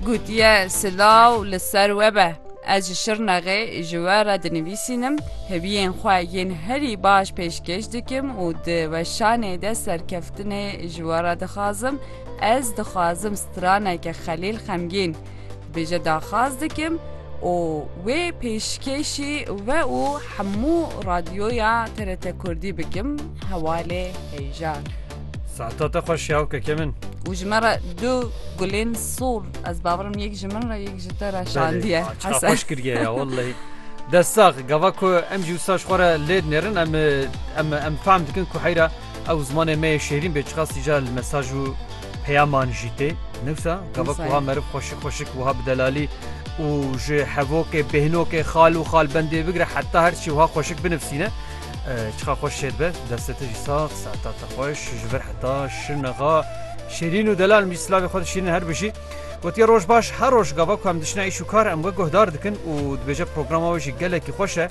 Gotiye silaw li ser we be. Ez ji Şirnexê ji we re dinivîsînim, hêviyên xwe yên herî baş pêşkêş dikim û di weşanê de serkeftinê ji we re dixwazim. Ez dixwazim straneke Xelîl xemgîn. Bêje daxwaz dikim û wê pêşkêşî we û hemû radyoya TRT Kurdî bikim hevalê heyjan. Saeta te xweş ya wkeke min. Û ji me re du gulên sol ez bawer im yek ji min re yek ji te re şandiye. Belê, çiqa Hesen. xweş kiriye ya wellehî. Dest sax, gava ku em jî wisa ji xwe re lê dinêrin em em em fehm dikin ku heyra Ew zimanê me yê şêrîn bê çiqas jî ca li mesaj û peyaman jî tê. Newsa gava ku Wisa ye. ha meriv xweşik xweşik wiha bi delalî û ji hevokê, bêhnokê, xal û xalbendê bigire heta her çi wiha xweşik binivîsîne. Eh, Çiqa xweş şêr be. Destê te jî sax, seeta te xweş. Ji vir heta şirnexa şêrîn û delal mijî silavê xwe di şîrin her bijî. Gotiye roj baş. Her roj gava ku em diçine îş û kar em we guhdar dikin û dibêje programa we jî gelekî xweş e.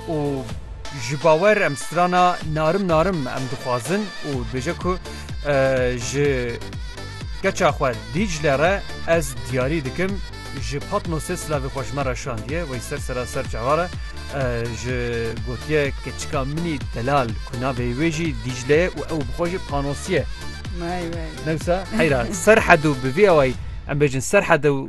û ji bawer em strana narim narim em dixwazin û dibêje ku ji keça xwe dîcle re ez diyarî dikim ji patnosê silavê xweş me re şandiye wey ser sera ser çavare ji gotiye keçika minî delal ku navê wê jî dîcleye û ew bixwe jî panosiye newsa heyra ser hedû bi vî awayî em bêjin ser hedû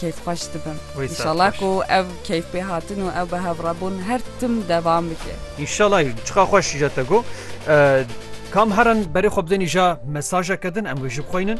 keyfxweş dibim. Wê saet Înşallah xweş. ku ev keyfpêhatin û ew bihevrabûn her tim devam bike. Înşallah jî çiqa xweş îja te got. Kam herin berê xwe bidên îja mesajeke din em wê jî bixweynin.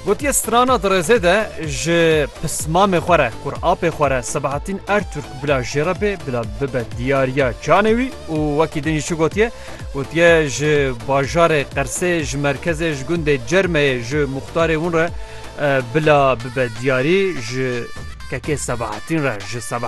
Gotiye strana di rêzê de ji pismamê xwe re, kur apê xwe re Sebahattin Ertürk, Bila jê re bê, bila bibe diyariya canê wî û wekî din jî çi gotiye? Gotiye ji bajarê Qersê, ji merkezê, ji gundê Cermeyê, ji muxtarê hûn re bila bibe diyarî, ji kekê Sebahatîn re, ji